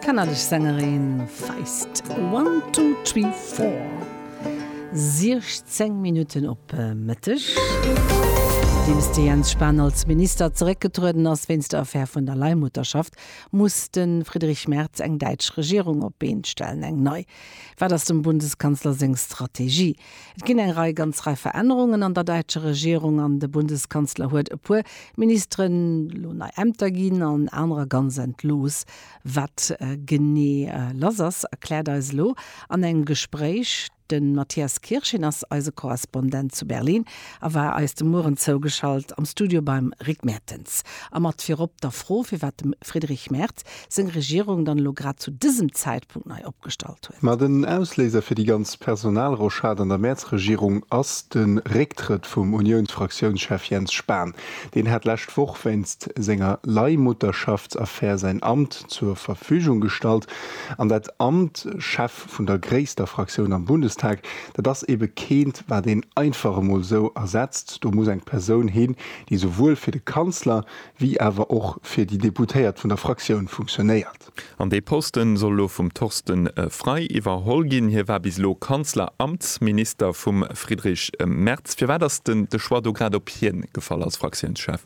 D'kanadesch Sängerin Feist, One Two Three Four, 16 Minutten op Mëtteg. Nodeems de Jens Spahn als Minister zeréckgetrueden ass wéinst der Affär vun der Leihmutterschaft, muss de Friedrich Merz eng däitsch Regierung op d'Been stellen. Eng nei. Wat ass dem Bundeskanzler seng Strategie? Et ginn eng Rei ganz Rei Verännerungen an der däitscher Regierung an de Bundeskanzler huet e puer Ministeren elo nei Ämter ginn an anerer ganz entlooss. Wat genee lass ass, erkläert eis elo an engem Gespréich de Matthias Kirsch. Hien ass eise Korrespondent zu Berlin a war eis de Mueren zougeschalt am Studio beim Rick Mertens. A mat virop der Fro, firwat dem Friedrich Merz seng Regierung dann elo grad zu dësem Zäitpunkt nei opgestallt huet. Ma den Ausléiser fir déi ganz Personalrochade an der Mäerz-Regierung ass de Récktrëtt vum Uniounsfraktiounschef Jens Spahn. Deen hat lescht Woch wéinst senger Leihmutterschaftsaffär säin Amt zur Verfügung gestallt. An dat Amt, Chef vun der gréisster Fraktioun am Bundestag, dat ass ebe keent, wat een einfach emol esou ersetzt. Do muss eng Persoun hin, déi souwuel fir de Kanzler wéi awer och fir déi Deputéiert vun der Fraktioun funktionéiert. An dee Posten soll elo vum Torsten Frei iwwerholl ginn. Hie war bis elo Kanzleramtsminister vum Friedrich Merz. Firwat ass den de Choix do grad op hien gefall als Fraktiounschef?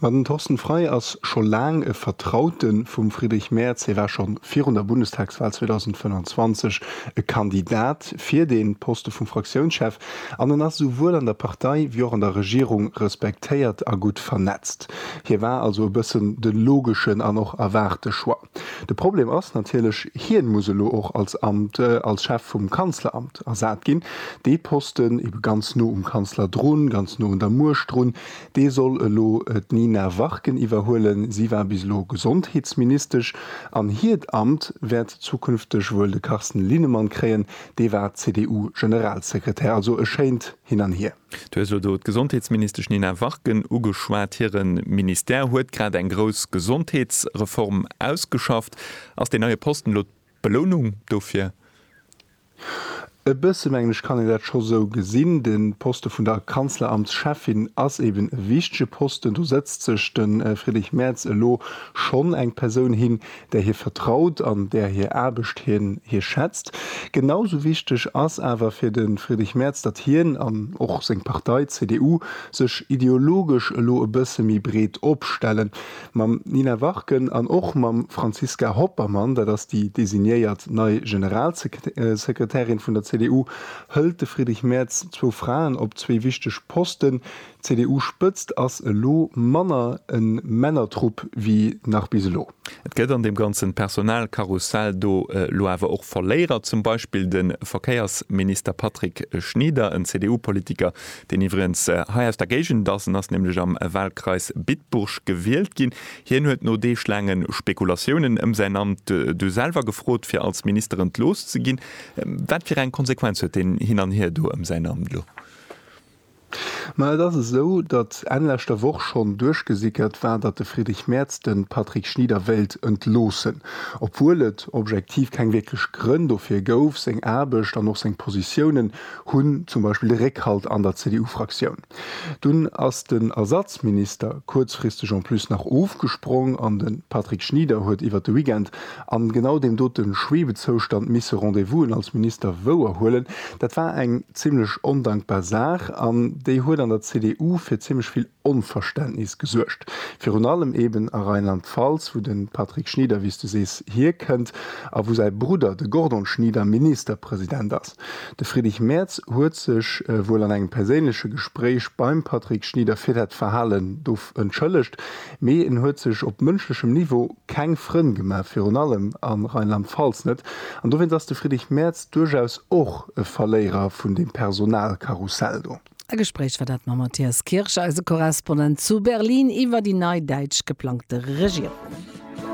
Ma den Torsten Frei ass scho laang e Vertraute vum Friedrich Merz. Hie war scho virun der Bundestagswal 2025 e Kandidat fir dee Poste vum Fraktiounschef. An en ass esouwuel an der Partei wéi och an der Regierung respektéiert a gutt vernetzt. Hie war also e bëssen de logeschen an och erwaarte Choix. De Problem ass natierlech, hien muss elo och als Amt als Chef vum Kanzleramt ersat ginn. Dee Posten, ebe ganz no um Kanzler drun, ganz no un der Muecht drun, dee soll elo d'Nina Warken iwwerhuelen. Si war bis elo Gesondheetsministesch an hiert Amt wäert zukünfteg wuel de Carsten Linnemann kréien, dee war CDU-Generalsekretär. Also e schéint Hin an Hier. Du hues elo do d'Gesondheetsministesch Nina Warken ugeschwat. Hire Ministère huet grad eng grouss Gesondheetsreform ausgeschafft. Ass deen neie Posten elo d'Belounung dofir? E bësse mengen ech kann een dat scho sou gesinn. De Poste vun der Kanzleramtscheffin ass eben e wichtege Posten. Do sëtzt sech de Friedrich Merz elo schonn eng Persoun hin, där hie vertraut an där hir Aarbecht hien hie schätzt. Genau sou wichteg ass awer fir de Friedrich Merz, datt hien an och seng Partei CDU sech ideologesch elo e bësse méi breet opstellen. Mam Nina Warken an och mam Franziska Hoppermann, dat ass déi designéiert nei Generalsekretärin vun der CDU, hëlt de Friedrich Merz zwou Fraen op zwee wichteg Posten, D'CDU-Spëtzt ass elo manner e Männertrupp wéi nach bis elo. Et gëtt an deem ganzen Personalkarussell do elo awer och Verléierer, zum Beispill de Verkéiersminister Patrick Schnieder, en CDU-Politiker, deen iwwregens hei aus der Géigend ass. En ass nämlech am Wahlkreis Bitburg gewielt ginn. Hien huet no deeglaange Spekulatiounen ëm säin Amt du selwer gefrot, fir als Minister entlooss ze ginn. Wat fir eng Konsequenz huet deen Hin an Hier do ëm säin Amt elo? Ma et ass esou, datt Enn leschter Woch schonn duerchgesickert war, datt de Friedrich Merz de Patrick Schnieder wéilt entloossen. Obwuel et objektiv keng wierklech Grënn dofir gouf, seng Aarbecht an och seng Positiounen hunn zum Beispill Réckhalt an der CDU-Fraktioun. Dunn ass den Ersatzminister kuerzfristeg en plus nach ofgesprong an de Patrick Schnieder huet iwwer de Weekend An genau deem doten Schwebezoustand misse Rendez-Vousen als Minister wouer huelen, dat war eng zimlech ondankbar Saach an déi huet an der CDU fir zimlech vill Onverständnis gesuergt. Virun allem eben a Rheinland-Pfalz, wou den Patrick Schnieder, wéi's du sees, hierkennt a wou säi Brudder, de Gordon Schnieder, Ministerpresident ass. De Friedrich Merz huet sech wuel an engem perséinleche Gespréich beim Patrick Schnieder fir dat Verhalen do entschëllegt. Mee en huet sech op mënschlechem Niveau keng Frënn gemaach, virun allem a Rheinland-Pfalz net. An dowéinst ass de Friedrich Merz duerchaus och e Verléierer vun deem Personalkarussell do. E Gespréich war dat mam Matthias Kirsch, eise Korrespondent zu Berlin, iwwer déi nei däitsch geplangte Regierung.